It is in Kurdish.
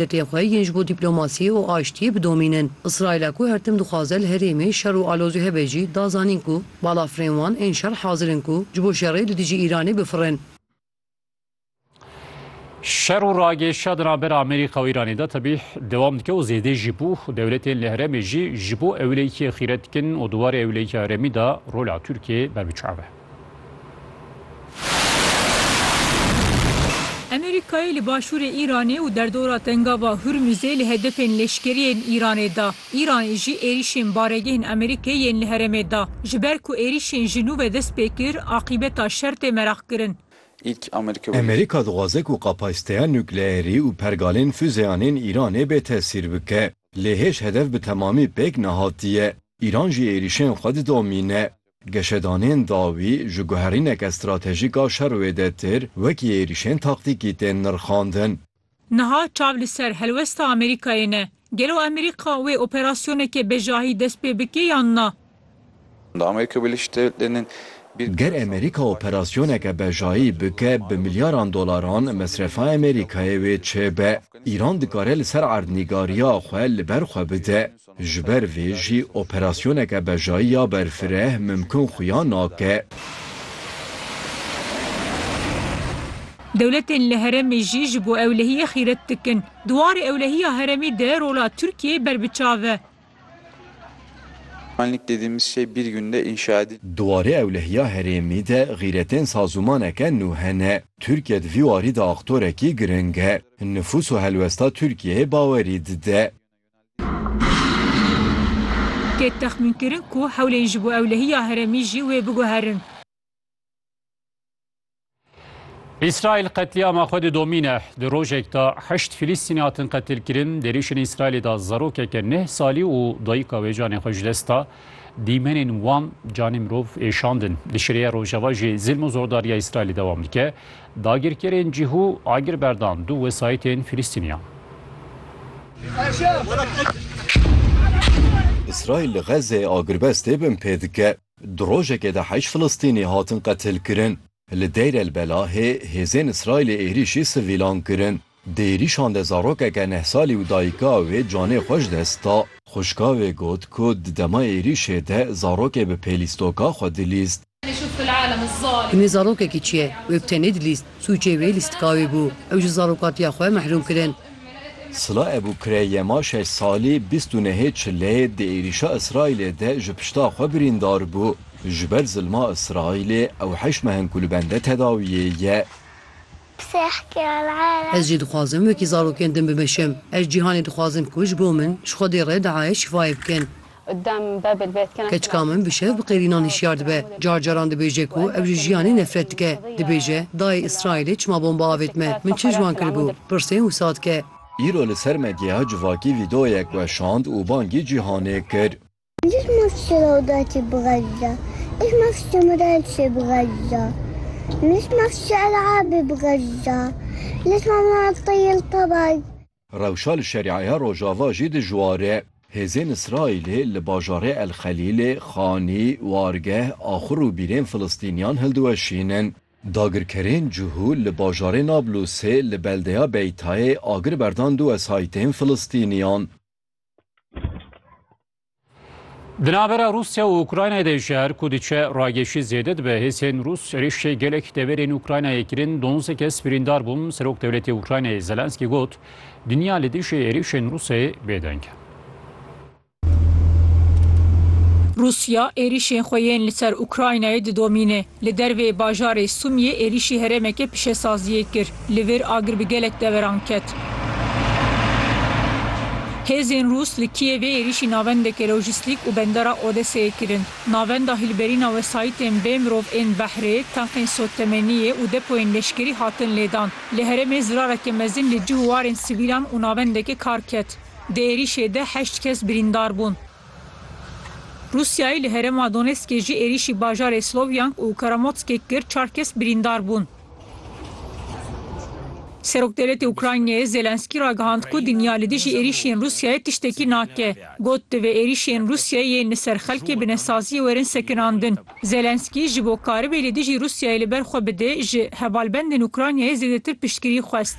Neteweyên xwe yên ji bo dîplomasiyê û aştiyê bidomînin. Îsraîla ku her tim dixwaze li herêmê şer û alozî hebe jî da zanîn ku balafirên wan ên şer hazir in ku ji bo şerê li dijî Îranê bifirin. Şer û ragêşa di navber Amerîka û Îranê de tevî dewam dike û zêdê jî bû. Dewletên li herêmê jî ji bo ewlêkiyê xîret dikin û di warê ewlêkiya herêmî de rola Tirkiyeyê berbiçav e. Amerîkayê li başûrê Îranê û derdora Tengava Hurmûzê li hedefên leşkerî yên Îranê da. Îranê jî êrîşên baregehên Amerîkê yên li herêmê da. Ji ber ku êrîşên ji nû ve dest pê kir, aqîbeta şer tê meraqkirin. Amerîka dixwaze ku kapasîteya nukleerî û pergalên fuzeyan ên Îranê bê tesîr bike. Lê hêj hedef bi temamî pêk nehatiye. Îran jî êrîşên xwe didomîne. Geşedanên dawî ji guherîneke stratejîk a şerwê de têr wekî êrîşên taktîkî tên nirxandin. Niha çav li ser helwesta Amerîkayê ne. Gelo Amerîka wê operasyoneke bejahî dest pê bike yan na? Ger Amerîka operasyoneke bejahî bike bi milyaran dolaran mesrefa Amerîkayê wê çêbe. Îran dikare li ser erdnîgariya xwe li ber xwe bide. Ji ber vê jî operasyoneke bejayî ya berfireh mimkun xuya nake. Dewletên li heremê jî ji bo ewlehiyê xîret dikin. Di warê ewlehiya heremê de rola Tirkiyeyê ber bi çav e. Di warê ewlehiya herêmî de xîretên sazûmaneke nû hene. Tirkiye di vî warî de aktorekî giring e. Nifûs û helwesta Tirkiyeyê bawerî dide. Tê texmînkirin ku hewlên ji bo ewlehiya heremî jî wê biguherin. Îsraîl qetlîama xwe didomîne. Di rojek de heşt Filîstînî hatin qetilkirin. Di êrîşên Îsraîlê de zarokeke neh salî û dayika wê canê xwe ji dest da. Dîmenên wan canê mirov êşandin. Li Şirêya Rojava jî zilm û zordariya Îsraîlê dewam dike. Dagirkerên cihû agir berdan du wesayîtên Filistîniyan. Îsraîl li Xezzê agirbest tê bin pê dike. Di rojekê de heşt Filistînî hatin qetilkirin. Li Deir el Belahê hêzên Îsraîlê êrîşî sivîlan kirin. Di êrîşan de zarokeke neh salî û dayika wê canê xwe ji dest da. Xwişka wê got ku di dema êrîşê de zarokê bi pêlîstoka xwe dilîst. Hinê zarokekî çi ye wê bi tenê dilîst, sûcê wê lîstika wê bû, ew ji zarokatiya xwe mehrûm kirin. Sila Ebû Kureyyema şeş salî bîst û nehê çilê di êrîşa Îsraîlê de ji pişta xwe birîndar bû. Ji ber zilma Îsraîlê ew heşt meh in ku li bende tedawiyê ye. Ez jî dixwazim wekî zarokên din bimeşim. Ez cîhanê dixwazim ku ji bo min, ji Xwedê re diayê şifayê bikin. Keçika min bi şev bi qêrînan hişyar dibe. Car caran dibêje ku ev ji jiyanê nefret dike. Dibêje, Dayê Îsraîlê çima bomba avêt me? Min çi ji wan kiribû? Pirsên wisa dike. Îro li ser me giha civakî vîdeoyek weşand û bangî cîhanê kir. Êş ma fişela û da çê bixerca. Êş ma fişe ma da çê bixerca. Mêş ma fişe ela abê bixerca. Leş ma ma aqta yel tabag. Rewşa li Şeriaya Rojava jî dijwar e. Hêzên Îsraîlê li bajarê El Xelîlê, Xanî, Wargeh, Axur û bîrên Filistîniyan hildiweşînin. Dagirkerên cihû li bajarê Nablusê li beldeya Beytayê agir berdan du wesayîtên Filistîniyan. Di navbera Rûsya û Ukraynayê de ji her ku diçe rageşî zêde dibe. Hêsên Rûs êrişê gelek deverên Ukraynayê kirin, donze kes birîndar bûn. Serok dewletê Ukraynayê Zelenskî got, Dinya li dijî êrişên Rûsê bêdeng e. Rûsya êrişên xwe yên li ser Ukraynayê didomîne. Li dervê bajarê Sumiyê êrişî herêmeke pişesaziyê kir. Li vir agir bi gelek deveran ket. Hêzên Rûs li Kîyevê êrîşî navendeke lojîstîk û bendera Odeseyê kirin. Navenda hilberîna wesayîtên bê mirov ên behrê, tenxên sottemeniyê û depoyên leşkerî hatin lêdan. Li herêmê zirareke mezin li cih û warên sivîlan û navendeke kar ket. Di êrîşê de heşt kes birîndar bûn. Rûsyayê li herêma Donetskê jî êrîşî bajarê Sloviansk û Karamotskê kir, çar kes birîndar bûn. Serokdewletê Ukraynayê Zelensky ragihand ku dinya li dijî êrîşên Rûsyayê tiştekî nake. Got, Divê êrîşên Rûsyayê yên li ser xelkê binesaziyê werin sekinandin. Zelensky ji bo karibê li dijî Rûsyayê li ber xwe bide, ji hevalbendên Ukraynayê zêdetir piştgirî xwest.